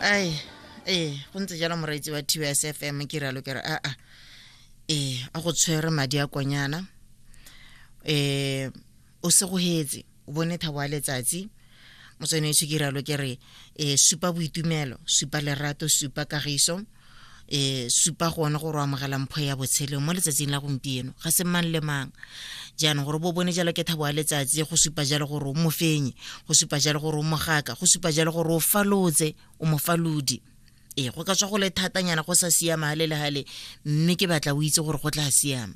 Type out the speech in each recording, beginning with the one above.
ai ee go ntse jalo moreetsi wa tbs f m ke ralo ke re aa ah, ah. ee a go tshwere madi a konyana um o segogetse o bone thabo a letsatsi motsweneetsho ke ralo ke re um supa boitumelo supa lerato supa kagiso e supa gone gore o amogela mpho ya botshelo mo letsatsing la gompieno ga se mang le mang jaanong gore bo bone jalo ke thabo ya letsatsi go supa jalo gore o mofenye go supa jalo gore o mogaka go supa jalo gore o falotse o mofalodi ee go ka tswa go le thatanyana go sa siama gale le gale mme ke batla o itse gore go tla siama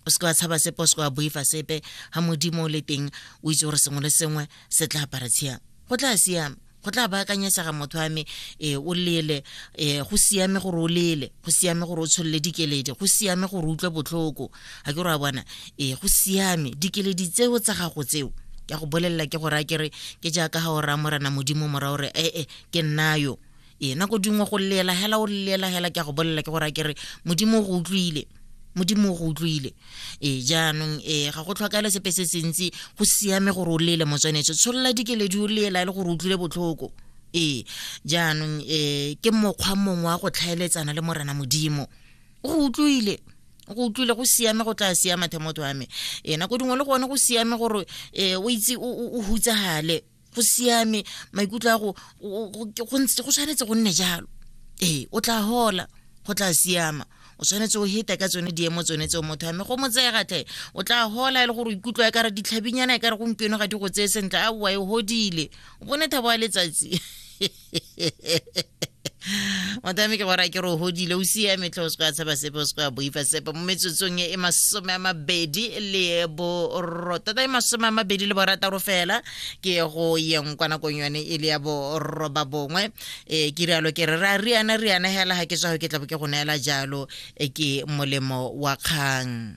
o seke wa tshaba sepe o seke wa boifa sepe ga modimo o le teng o itse gore sengwe le sengwe se tla apara tshiang go tla siama go tla baakanyesega motho wa me e o lele e go siame gore o lele go siame gore o tsholole dikeledi go siame gore o utlwe botlhoko ga ke gore a bona e go siame dikeledi tseo tsa gago tseo ke go bolelela ke gore a kere ke jaaka ga o raya morena modimo mora gore ee ke nnayo ee nako dingwe go llela hela o llela hela ke a go bolelela ke gore a ke re modimo o go utlwile modimo o go utlwile ee jaanong ee ga go tlhokagale sepe se sentsi go siame gore o lele motswanetse tsholola dikeledi o lela e le gore o utlwile botlhoko ee jaanong ee ke mokgwa mongwe wa go tlhaeletsana le morena modimo o go utlwile go utlwile go siame go tla siama themoto wa me ee nako dingwe le gone go siame gore um o itse o hutsagale go siame maikutlo a go go tshwanetse go nne jalo ee o tla hola go tla siama o tshwanetse o heta ka tsone diemo tsone tseo motho ame go motseegatlhe o tla hola e le gore ikutlwa e kare ditlhabinyana e kare gompieno ga di go tseye sentle a oa e godile o bone thabo ya letsatsi motameke gore a ke re o godile o siame tlhe o se ka tshaba sepe o se ka boifa sepe mo metsotsong e masome a mabedi le borotata e masome a mabedi le borataro fela ke go yeng kwa nakong yone e le ya boroba bongwe e ke rialo ke re ra riana riana hela ga ke tswa go ke tlabo ke go neela jalo e ke molemo wa kgang